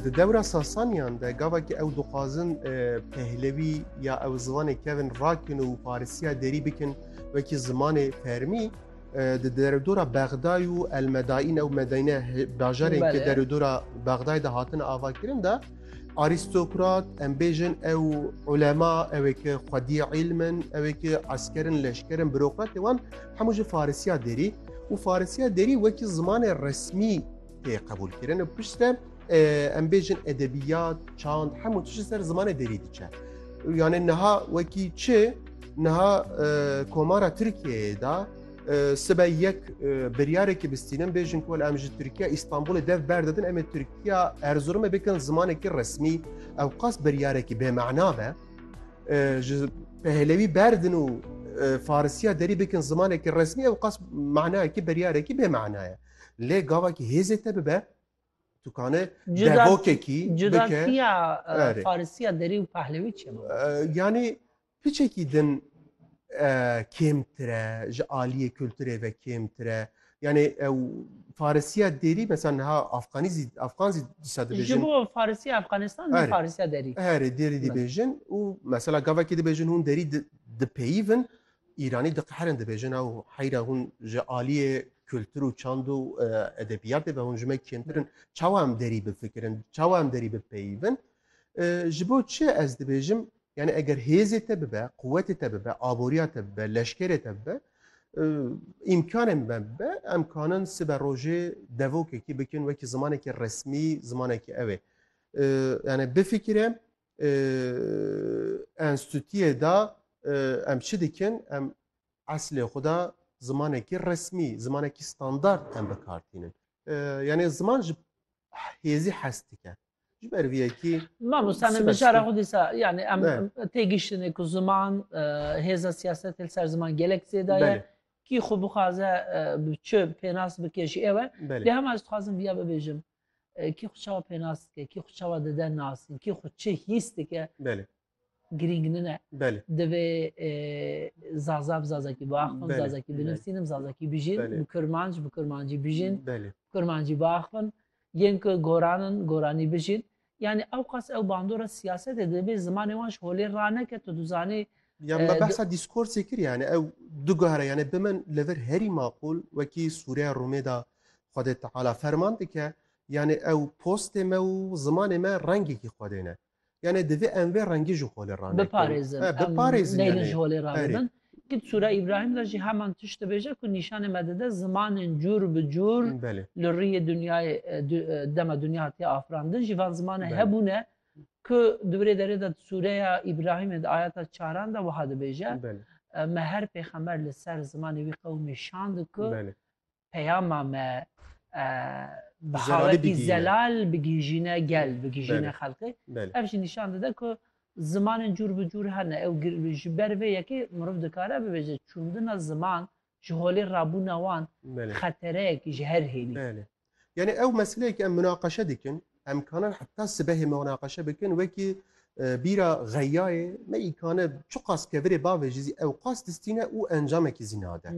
Di dewra Sasaniyan de gavekî ew dixwazin Pehlewî ya ew zimanê kevin rakin û Farisiya derî bikin wekî zimanê fermî di deredora Bexday û Elmedaîn ew medayne bajarên ke deredora Bexday de hatine avakirin de arîstokrat em bêjin ew ulema ewê ke xwedî îlmin ewê ke eskerin leşkerin birokratê wan Hemû ji Farisiya Derî û Farisiya Derî wekî zimanê resmî tê qebûlkirin û pişt de em bêjin edebiyat, çand hemû tişt ser zimanê Derî diçe. Yani niha wekî çi niha komara Tirkiyeyê da sibe yek biryareke bistînin bêjin ku em ji Tirkiya Îstanbulê dev berdedin em ê Tirkiya Erzurumê bikin zimanekî resmî ew qas biryarekî bêmana be. ji pehlewî berdin û farisiya derî bikin zimanekî resmî ew qas manayekî beryarekî bê manaye lê gavakî hêzê te bibe tu kane devokekî cudasiya farisiya derî û pehlewî çi yanî piçekî din kêmtire ji aliyê kulturê ve kêmtire Yani ew Farisiya derî mesela niha Afganî zî Afgan zî disa dibêjin. Ji bo Farisiya Afganistan ne Farisiya derî. Herê derî dibêjin û mesela gavekê dibêjin hûn derî dipeyivin Îranî diqeherin dibêjin ew heyra hûn ji aliyê kultur û çand û e, edebiyatê ve hûn ji me kêmtirin çawa em derî bifikirin çawa em derî bipeyivin e, ji bo çi ez dibêjim Yanî eger hêzê te bibe, quwetê te bibe, aboriya te bibe, leşkerê te bibe, îmkanên me bibe, em kanin sibe rojê devokekî bikin wekî zimanekî resmî, zimanekî ew ê. Yanî bifikire enstîtuyê de em çi dikin, em eslê xwe de zimanekî resmî, zimanekî standard em bikar tînin. Yanî ziman ji hêzî hes dike. Ji ber vê yekî Mamosta min mijara xwe dîsa yani em têgihiştinê ku ziman hêza siyasetê li ser ziman gelek zêda ye kî xwe bixwaze bi çi pênas bike jî ew e lê hema ez dixwazim viya bibêjim kî xwe çawa pênas dike kî xwe çawa dide nasîn kî xwe çi hîs dike girîng nine. Belê. Divê zaza bi zazakî biaxivin, zazakî binivîsînim, zazakî bijîn, bi kurmanc bi kurmancî bijîn, bi kurmancî biaxivin, yên ku goran in goranî bijîn. Yani ew qas ew bandora siyasetê dibê zimanê wan ji holê raneke tu dizanî Ya me behsa dîskorsê kir yani ew du guhere yani bi min li vir herî maqûl wekî sûreya Rûmê de Xwedê Teala ferman dike yani ew postê me û zimanê me rengekî Xwedê ne. Yanê divê em vê rengî ji holê ranekin. Biparêzin. E, biparêzin em neylin ji holê rabibin. Kit Sûra Îbrahîm de jî heman tişt dibêje ku nîşanê me dide zimanên cûr bi cûr li riyê dinyayê dema dinya hatiye afirandin jî van zimanê hebûne ku di birê derê de di Sûreya Îbrahîmê di ayeta çaran de wiha dibêje me her pêxember li ser zimanê wî qewimî şand ku peyama me bi xawetî zelal bigihîjîne gel, bigihîjîne xelkê. Ev jî nîşan dide ku zimanên cûr bi cûr hene. Ew ji ber vê yekê mirov dikare bibêje çûndina ziman ji holê rabûna wan xetereyekî ji her hênî. Yanî ew meseleyekî em munaqeşe dikin Em kanin heta sibehê munaqeşe bikin wekî bîra xeyayê me îkane çiqas kevirê bavê jî zî ewqas distîne û encamekî zî nade.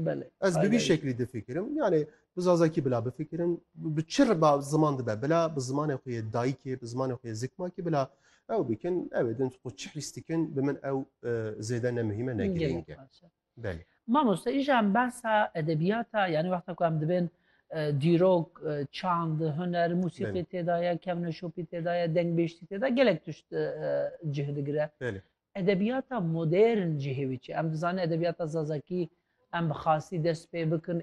Ez bi vî şeklî difikirim yanê bi zazakî bila bifikirin bi çi riba ziman dibe bila bi zimanê xwe yê dayikê bi zimanê xwe yê zikmakî bila ew bikin ew ê din xwe çi hîs dikin bi min ew zêde ne muhîme ne girîng e. Belê. Mamoste îja em behsa edebiyata yani wexta ku em dibên dîrok, çand, huner, musîqî têdaye, kevneşopî têdaye, dengbêjtî têda gelek tişt cih digire. Belê. Edebiyata modern cihê wî çi? Em dizane edebiyata zazakî em bi xasî dest pê bikin